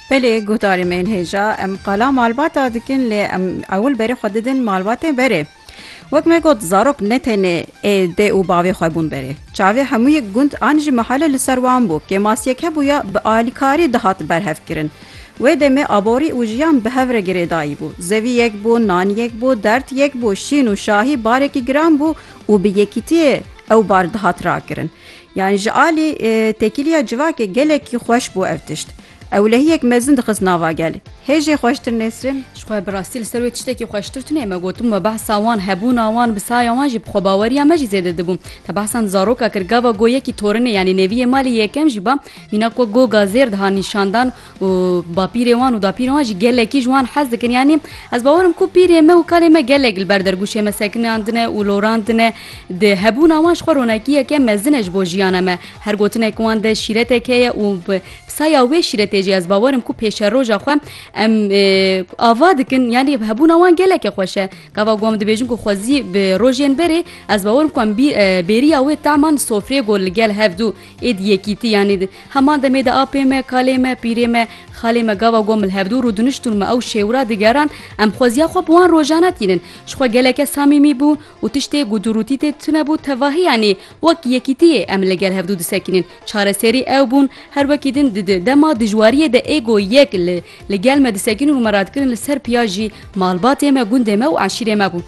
Belê guhdarê me yên hêja em qala malbata dikin lê em ewil berê xwe didin malbatê berê. Wek me got zarok ne tenê ê dê û bavê xwe bûn berê. Çavê hemû yek gund an jî mehale li ser wan bû. Kêmasiyek hebûya bi alîkarî dihat berhevkirin. Wê demê aborî û jiyan bi hev re girêdayî bû. Zevî yek bû, nan yek bû, derd yek bû, şîn û şahî barekî giran bû û bi yekîtiyê ew bar dihat rakirin. Yan ji alî tekîliya civakê gelekî xweş bû ev tişt. Ewlehiyek mezin dixist nava gel. Hê jê xweştir Nesrin? Ji xwe bi rastî li ser wê tiştekî xweştir tune me gotin me behsa wan, hebûna wan, bi saya wan jî bi xwebaweriya me jî zêde dibû. Te behsa di zaroka kir gava go yekî torinê yanî neviyê malê yekem jî ba mîna ku go gazêr diha nîşandan û bapîrê wan û dapîrên wan jî gelekî ji wan hez dikin yanî ez bawerim ku pîrê me û kalê me gelek li ber dergûşê me sekinandine û lorandine di hebûna wan ji xwe ronakiyeke mezine ji bo jiyana me her gotinek wan de şîretek heye û bi saya wê şîretê jî ez bawerim ku pêşeroja xwe em ava dikin yanî hebûna wan geleke xweş e gava wan dibêjin ku xwezî bi rojên berê ez bawerim ku em bêriya wê taman sofrê got li gel hevdû Êdî yekîtî yanî di heman demê de apê me, kalê me, pîrê me, xalê me gava gom li hevdû rû diniştûn me ew şêwira digeran em xweziya xwe bi wan rojan e tînin. Ji xwe geleke samîmî bû û tiştê ku du rûtî tê tune bû tevahî yanî wek yekîtiyê em li gel hevdû disekînin. Çareserî ew bûn her wekî din di di dema dijwariyê de êgo yek li li gel me disekînin û me radikirin li ser piya jî malbatê me, gundê me û eşîrê me bû.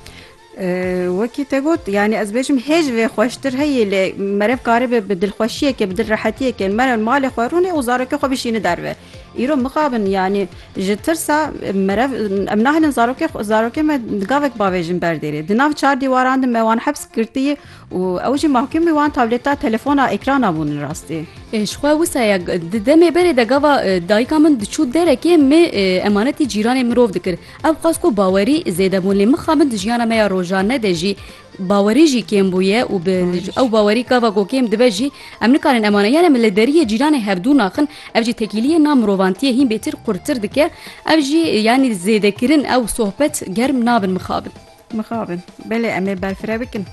Wekî te got yanî ez bêjim hê ji vê xweştir heyî lê merev karibe bi dilxweşiyekê bi dil rehetiyekê mere malê xwe rûnê û zarokê xwe bişîne derve. Îro mixabin yanî ji tirsa merev em nahêlin zarokê xwe zarokê me gavek bavêjin ber dêrê. Di nav çar dîwaran de me wan heps girtiyî û ew jî mahkumî wan tablêta telefona êkrana bûn rastî. Ji xwe wisa ye di demê berê de gava dayika min diçû derekê me emanetî cîranê mirov dikir. Ev xwest ku bawerî zêde bûn lê mixabin di jiyana me ya rojane de jî bawerî jî kêm bûye û bi ew bawerî gava ku kêm dibe jî em nikarin eman e. Yan em li deriyê cîranê hevdû naxin ev jî tekîliyê na mirovantiyê hîn bêtir qurtir dike. Ev jî yanî zêdekirin ew sohbet germ nabin mixabin. Mixabin belê em ê berfireh bikin.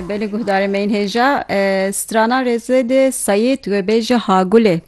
Belê guhdarê me yên hêja stranan rêzê dê Seyîd wê bêje ha gulê.